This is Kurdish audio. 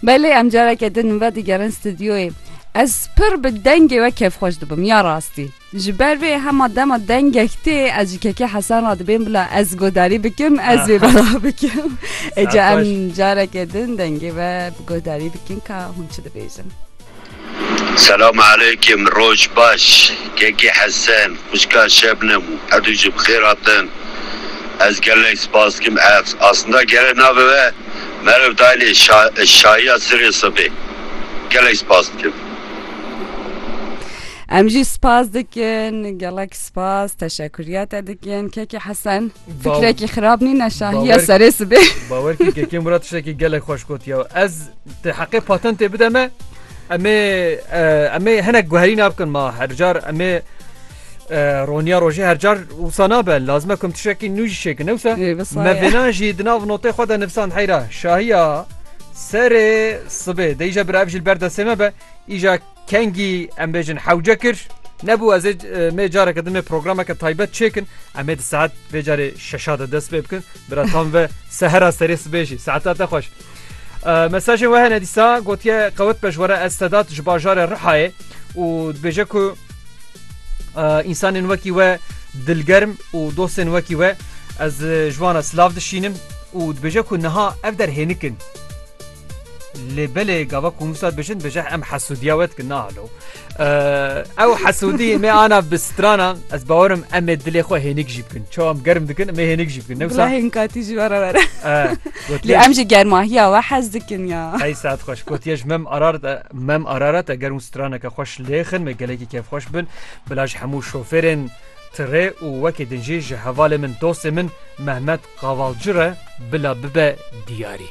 Belê em careke din ve digerin stûdyoyê. Ez pir bi dengê we kêfxweş dibim ya rastî. Ji ber vê hema dema dengek tê ez ji kekê Hesan re dibêm bila ez godarî bikim ez vê bela bikim. Êca em careke din dengê ve bi godarî bikin ka hûn çi dibêjin. Selam aleyküm roj baş kekê hesen xwişka şebnem û edû jî bi xêr hatin ez gelek spas dikim ev aslında gere nabibe meriv daynê şayiya sirê sibê gelek spas dikim. Em jî spas dikin gelek spas teşekurîya te dikin kekê hesen. Fikrekî xirab nîn e şahiya serê sibê. Bawer kî kekê Murat tiştekî gelek xweş gotiye. Ez te heqê patentê bide me em ê em ê hinek guherîna bikin ma her car em ê roniya rojê her car wisa nabe lazime kum tiştekî nû jî şêkin newsa me vêna jî di nav notê xwe de nivsan heyra şahiya serê sibê deyîje bir ev jî berdesê me be îja Kengî em bêjin hewce kir. Nebû ez ê mê careke din mê programeke taybet çêkin em ê di saet vê carê şeşa de dest pê bikin bira tam ve sehera serê sibê jî saeta te xweş. Mesajên we hene dîsa gotiye qewet pejwere ez sedat ji bajarê Rihayê û dibêje ku însanên wekî we dilgerm û dostên wekî we ez ji wan re silav dişînim û dibêje ku niha ev derhênikin. Lê belê gava ku Musa dibêjin dibêje em hesûdiya we dikin nahalo. Ew hesûdî me ana bi strana ez bawerim em ê dilê xwe hênik jî bikin. Çawa em germ dikin me hênik jî bikin newsa hên katî jî were were. Lê em ji germahiya we hez dikin ya. Hey saet xweş gotiye ji mem arar mem arara te germ straneke xweş lêxin me gelekî kevxweş bin bila ji hemû şofêrên Tirê û wekî din jî ji hevalê min dostê min Mehmet Kavalcı re bila bibe diyarî.